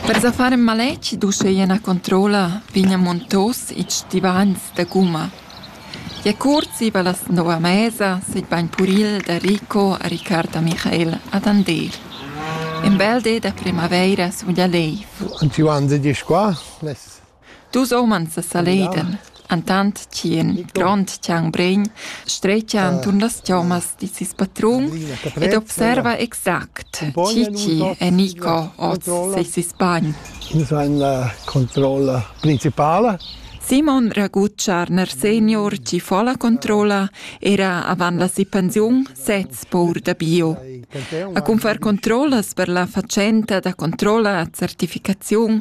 Per sa far ün maletg d'uscheia üna controlla vegnan muntos ils stivagns da gumma. Gia cuort zieva las nov a mesa s'es bain puril da Rico a Riccardo a Michael ad Andeer. Ün bel di da primavaira sun gia lei. Und wie waren Sie die Squaw? Les Dus umans sa saledan, entant ch'in grond tschanbregn stretgia enturn las chommas da ses patrun ed observa exact chi chi è Nico oz seis sbagn. Ins ha la controlla principala. Simon Ragutscharner senior chi fa la controlla era avant la si pensiun sez pour da bio. A cun far controllas per la fatschenta da controlla e certificaziun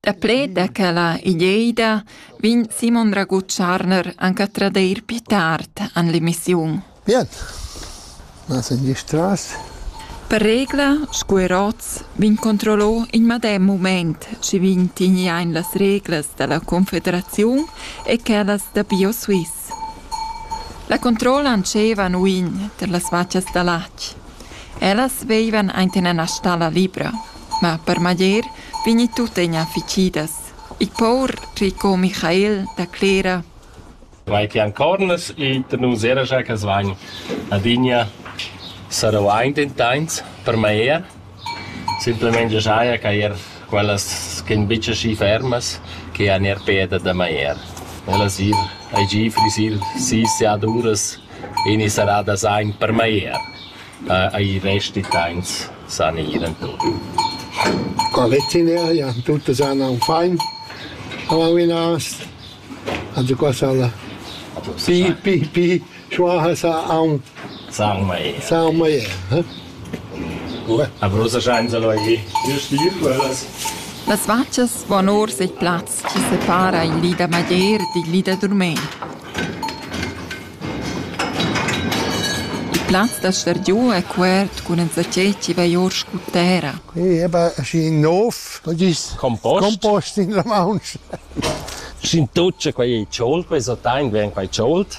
Daplet da quella ideida vegn Simon Raguth Scharner anc a tradeir pli tard en l'emissiun. Bien. Nas en gistras. Per regla, sco er oz, vegn controllò in medem mument, sche vegn tigni ein las reglas dalla Confederaziun e quellas da BioSwiss. La controlla antschevan uign tar las vatgas da latg. Ellas veivan ainten ena stalla libra, ma per maglier vegni tuttegna ficidas. Il pour Rico Michael da Clera Vai ti ancornas ita nus era gia che svagn adina sarau aint in tains per meier Simplamain già saja quai er quellas ch'en betg aschi fermas che han er peda da magliar. Ellas ir hagi frisir sis siaduras e ina serrada sain per magliar. I resti tains san ir enturn. Qua vecineria tutas han aunc fein a Lavinas. Also qua sala. Pi, pi, pi. Qua ha sà aunc Sarmeyer. Las vatgas van or sitt plaz chi separa il li da Madeir dil li da Durmein. Il plaz da stargiu è cuert cun enzatgei chi vai or scu terra. E va schi in nov, dis compost, compost in la mauncha. Sc'in tuccia quei ei tschult, quei so tein, vegn quei tschult.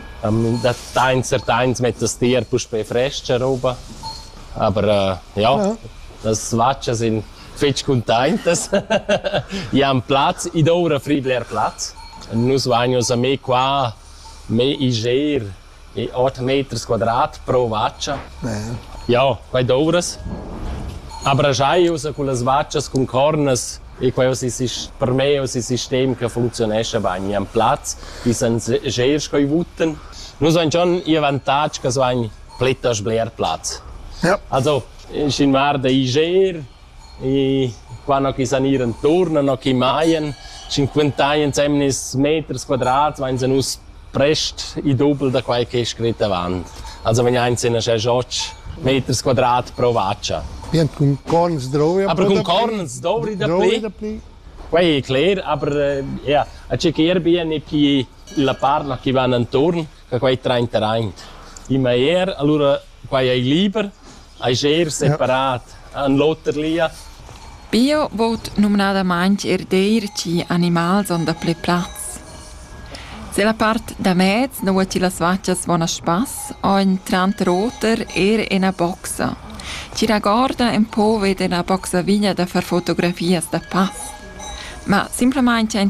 Da tains a tains mettas ti er puspè frescha roba, aber ja, las vatgas sun fetg cuntaintas. I han plaz, id oura fri bler plaz. Nus vagnos a me qua, me iger e ot meters quadrat pro vatga. Ja, quai douras. Aber giai ussa cullas vatgas cun cornas E quai uss es per me uss il sistem che funcziunescha bain. I han plaz, i san sger sco i votan. Nus hain schon i avantatg che so hain plettas bler plaz. Ja. Also, schin var da i ger, i qua no chi san ir inturn, no chi maien, schin quintaien semnes meters quadrats, vain se nus prest il dubel da quai che è scrit avant. Also vegn aint sin aschè gioch meters quadrat pro vacha. Bien cun corn sdrovia. Aber cun corn sdovri dapli. Quai è cler, aber ja, a chequer bien e chi la parla chi van intorn, che quai trainter aint. Immer er, allora quai è liber, Eis er separat, en l'oter lia. Bio vout numnadamaing er deir chi animals on daplü plaz. Se la part da mez nu ho chi las vachas buona spass, ho ün tranter oter er ena boxa. Chi ragorda ün po veda 'na boxa vigna da far fotografias da pass. Ma simplamaing aint